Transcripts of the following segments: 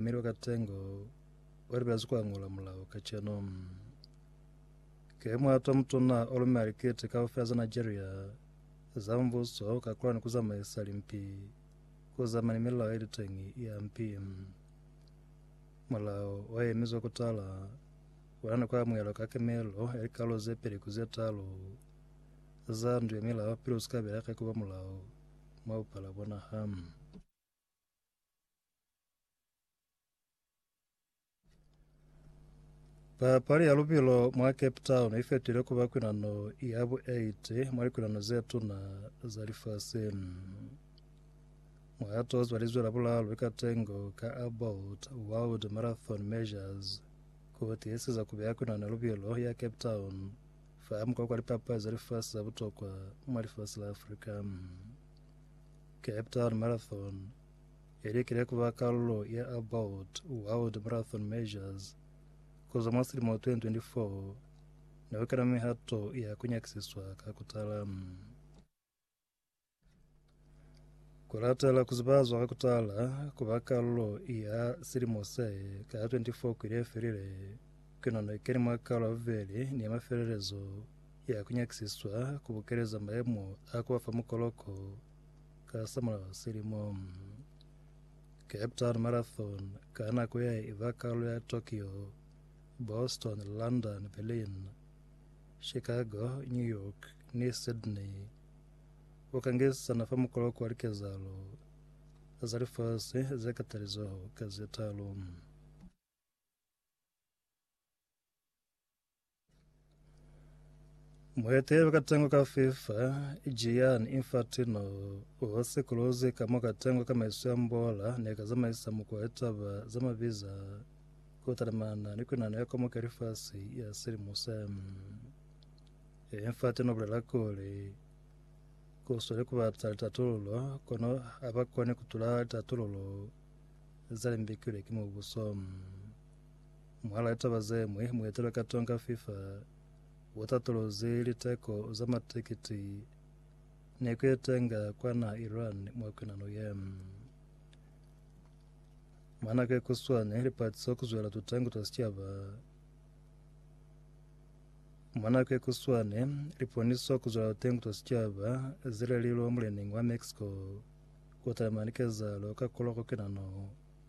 Mi lwa katengo wa libela zikwa ngola mulao kaceno. Ke mwata mutuna olume alikete kaufela za Nigeria za mbuso ka kula ni kuzamaisa limpi kuzama ni milao ilitengi ya mpi. Mulao wa yemizwa kutala wana ni kwa mwelo ka kemelo ya likalo ze peli kuze talo za ndu ya milao pili usika bela ka kuba mulao mwa upala bona hamu. Papali ya lubilo mwa Cape Town i fetile ku ba kwinano ya bu 8 mwa likwinano ze tuna za lifasi. Muhato o zwalizwe la bulalo ka tengo ka About World Marathon Measures ku tiiseza ku beya kwinano ya lubilo ya Cape Town fa mukwa kwa lipapali za lifasi za butokwa mwa lifasi la Afrika. Cape Town Marathon I likile ku ba kalulo ya About World Marathon Measures ku zwa mwa silimo 2024 ni ku kena mihato ya ku nyakisiswa ka ku tala. Ku latela ku zibazwa ka ku tala ku ba kalulo ya silimo se ka 24 kwili ye felile, ku na ni keni mwa kalo ya bubeli ni ya mafelelezo ya ku nyakisiswa ku bukeleza maemo a ku ba fa mukoloko Ka sa mulaho wa silimo, Cape Town Marathon ka nako ya i ba kalu ya Tokyo, Boston, London, Berlin, Chicago, New York ni Sydney. U ka ngisisana fa mukoloko wa likezalo za lifasi ze katalizoho ka ze talu. Muhete wa katengo ka FIFA, Gianni Infantino, u hose kuluzi ka mo katengo ka maiso ya mbola ne ka zamaisa muku wa litaba za mabiza ku talimana ni kunano ya Komoka ya Lifasi ya silimo se. Infantino u bulela kuli, Ku sweli ku bata litatululo, kono ha ba koni ku tula litatululo za limbikilwe ki mubuso. Mwahal'a taba ze ñwi, muetelwa ka Tonga Fifa wo tatolozi liteko za matikiti ne ku etenga kwa naha Iran mwa kwinano ye. Mwa nako ye kuswani, lipatiso ku zwela tutangu twa sicaba mwa nako ye kuswani, liponiso ku zwela tutangu twa sicaba zilelilwe mulening wa Mexico ku talima likezalo ka koloko kwinano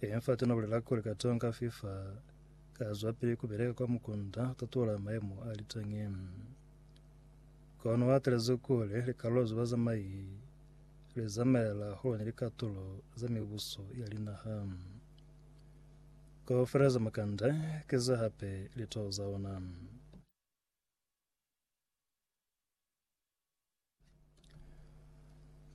Ili fati na bulela kuli katonga fifa ka zwapili kubeleka kwa mukunda tatola maemo a litangi kono watelezi kuli likalulo za bazamai li zamaela hole ni likatulo za mibuso ya linaha kaufela za makanda ke za hape litoho za ona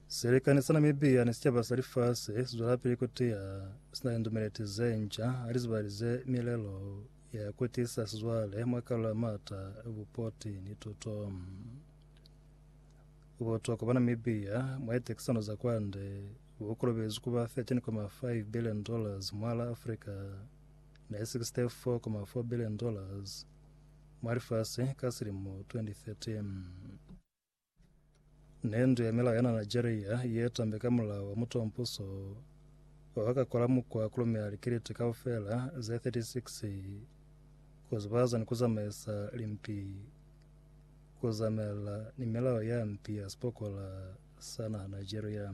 Silikani sa Namibia ni sicaba sa lifasi sizwelapili kutiya sina lindumeleti zenca halizibalize milelo ya kutisa sizwale mwa kalulo ya maata, bupoti ni tuto. Butokwa bwa Namibia mwa litekisano za kwande bukolobezi kuba 13.5 billion dollars mwa la Afrika ne 64.4 billion dollars mwa lifasi ka silimo 2013. Ne ndu ya milao ya na Nigeria ye tambe ka mulao wa mutompuso wa ka kola mukwa kulumela likiliti kaufela ze 36 kuzibaza ni kuzamaisa limpi kuzamela ni milao ya mpi ya sipokola sa naha Nigeria.